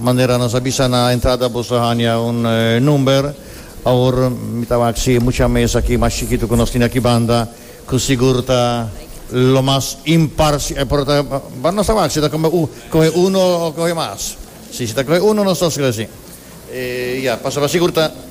Manera nos a bisa na entrada boso a hanja un number. Awor mi ta wak si e mucha mes aki mas chikitu ku nos tin aki banda ku sigur ta lo mas imparsh pero ta bueno nos ta wak si ta kome u kohe uno o kohe mas. Si si ta kohe uno nos ta eskribí asi. E ya pasaba sigur ta.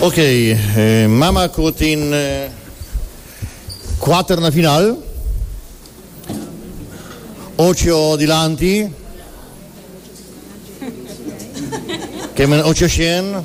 Ok, mama cu tin cuater na final, ocho dilanti, Cayman ocho shen,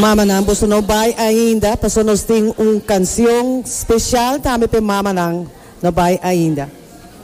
Mamanan boso no bai ainda paso nos tin un cancion special tambe p'e mamanan no bai ainda.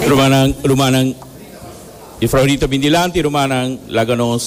Rumannan, rumannan, di Frau Rita bin dilanti, rumannan, laga nos.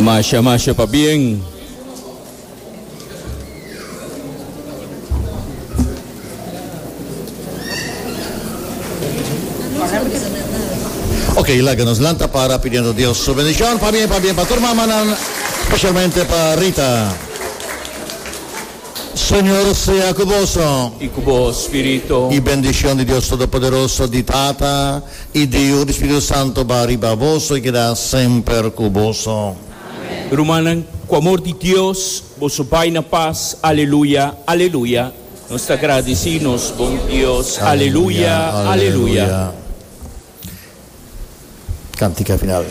Masha, masha pa bien. Ok, laga nos lanta para pidiendo Dios su bendición. Pa bien, pa bien pa tur mamanan, specialmente pa Rita. Señor sea cu boso. I cu bo spirito. I bendicion di Dios Todopoderoso, di Tata, i di Yu, di Spiritu Santo ba riba boso i keda semper cu boso. Rumannan, cu amor di Dios, boso bai na pas. Aleluya, aleluya. Nos ta gradici nos bon Dios. Aleluya, aleluya. Cantica final.